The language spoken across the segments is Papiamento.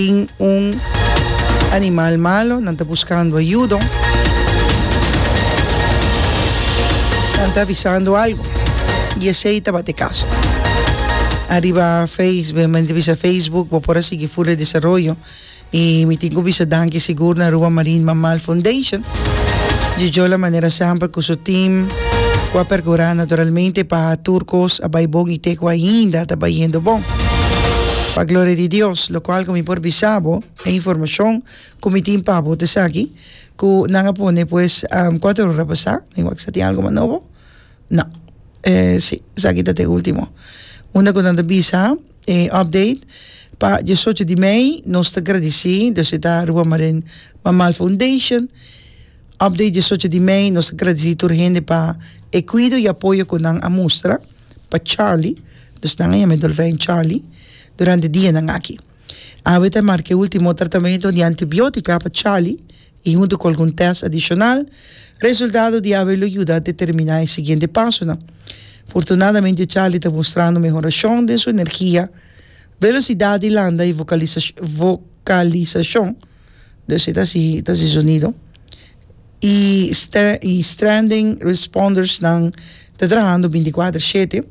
tin un animal malo, nan ta buskando ayudo, nan ta avisando algo y esey tabata e caso. Ariba face, mi a bisa facebook bo por a sigui fur e desaroyo y mi tin cu bisa danki sigur na Aruba Marine Mammal Foundation dje Jola Manera Samper cu su team cu a percura naturalmente pa tur cos a bay bon y te cu ainda ta bayendo bon. Pa gloria di Dios. Locual cu mi por bisa bo e informacion cu mi tin pa bo ta esaki, cu nan a pone pues cuatro ora pasa, mi wak sa tin algo mas nobo? No, si, esaki ta t'e ultimo. Unda cu nan ta bisa e update, pa diesocho di mei nos ta gradici, dus e ta Rua Marin Mammal Foundation, update diesocho di mei, nos ta gradici tur hende pa e cuido y apoyo cu nan a mustra. pa Charly, dus nan a yama e dolfijn Charly durante dianan aki. Awe ta marca e ultimo tratamento di antibiotica pa Charly y hunto cu algun test adicional, resultado di awe lo yuda determina e siguiente pasonan. Fortunadamente Charly ta mostrando mehoracion den su energia, velocidad di landa y vocalisacion. Dos e ta si e ta si sonido y y stranding responders nan ta trahando binti kuater shete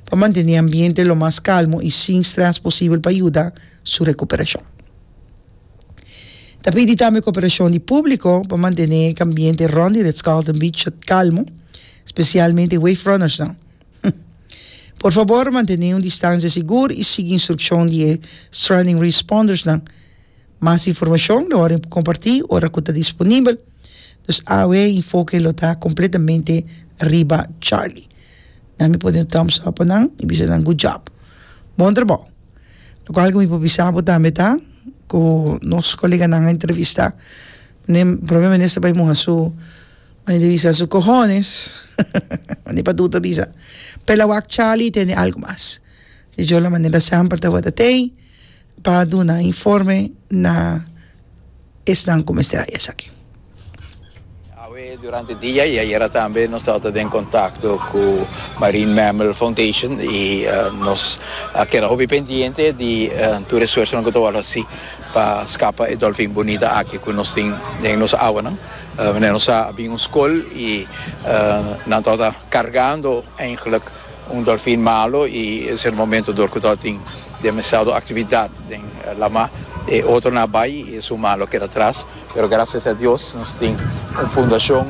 pa mantene e ambiente lo mas kalmo y sin stress posibel pa yuda su recuperashon. Ta pidi tambe cooperashon di publico pa mantene e ambiente rond di Ritz Carlton Beach kalmo specialmente wave runners nan. Por fabor mantene un distancia sigur y sigui instruccion di e stranding responders nan. Mas informashon lo horen por kompartí ora ku ta disponibel. Dus awe e enfoke lo ta kompletamente riba Charlie. Na mi por di un thumbs up pa nan i bisa nan good job. Bon trabou. Loke algu mi por bisa bo tambe ta ku nos koleganan a entrevistá meneer, Prome Minister bai muha su mane di bisa su kohones mane pa duda bisa. Pela wak Charlie tene algu mas. Dj'ola mane basèmper tabata tei. pa duna informe na esnan ku mester haya esaki. Awe durante dia i ayera tambe nos tabata den kontakto ku Marine Mammal Foundation i nos a keda hopi pendiente di tur esfuersonan ku ta wòrdu hasi pa skapa e dòlfin bunita aki ku nos tin den nos awanan. Manera nos sa a bin un skol i nan tabata kargando, eindelijk, Un dolfin malo y es el momento dor cu ta tin demasiado actividad den lama. E otronan a bay y es un man lo keda atras. Pero gracias a Dios nos tin un fundacion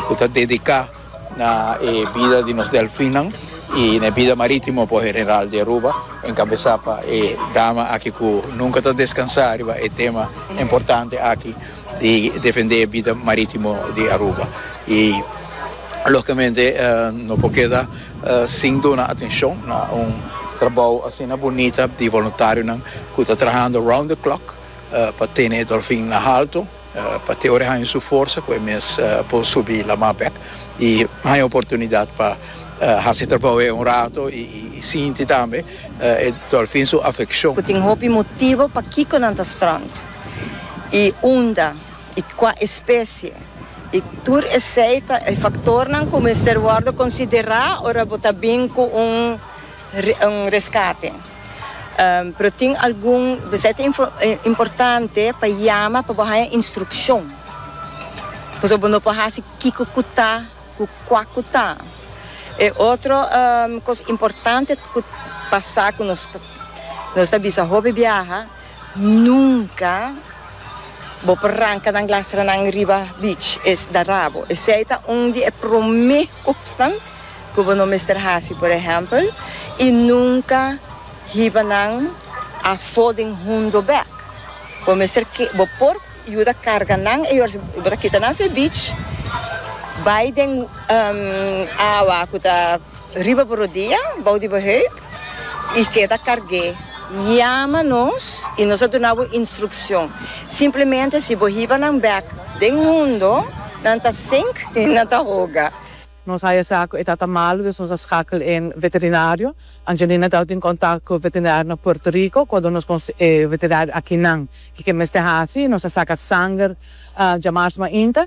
cu ta dedica na e bida di nos delfinnan y na e bida maritimo por general di Aruba, encabeza pa e dama aki cu nunca ta descansa riba e tema importante aki. di defende e bida marítimo di Aruba i logicamente no por keda sin duna atencion na un trabao asina bunita di voluntarionan cu ta trahando round the clock pa tene e dolfin na halto pa te ora haña su forsa cu e mes por subi lama bek i haña oportunidad pa haci e trabao e un rato i sinti tambe e dolfin su afeccion. Cu tin hopi motibo pakico nan ta strand. i unda i kua espesie, i tur esei ta e faktornan ku mester wòrdu konsiderá ora bo ta bin ku un un reskate. Pero tin algun esei ta importante pa yama pa bo haña instrukshon, pasobra bo no por hasi kiko ku ta ku kua ku ta. E otro kos importante ku pasá ku nos ta nos ta bisa hopi biaha. Nunca bo por ranca nan glastranan riba beach, es da rabo. Esey ta un di e prome cosnan cu bo no mester haci. Por ehempel, y nunca hiba nan afo den hundo bek. Bo mester ke, bo por yuda carga nan e oras bo ta kita nan afe beach, bay den awa cu ta. Riba bo rodia bou di bo hüid i keda karg'é. Yama nos i nos a duna bo instrukshon. Simplemente si bo hiba nan bèk den hundo, nan ta sink i nan ta hoga. Nos haya sa ku e tata malu, dus nos a skakel e veterinario. Angelina tau tin kontak ku veterinario na Puerto Rico ku a duna nos kos e veterinario akinan ke ke mester hasi. Nos a saka sanger djamar's mainta,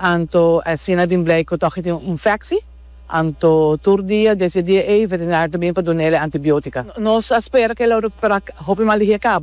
anto asina bin blei ku tòg e tin un infeksi. Anto tur dia des e dia ey, veterinario ta bini pa duna el e antibiótica. Nos a spera cu el a recuperá hopi mal di hie caba.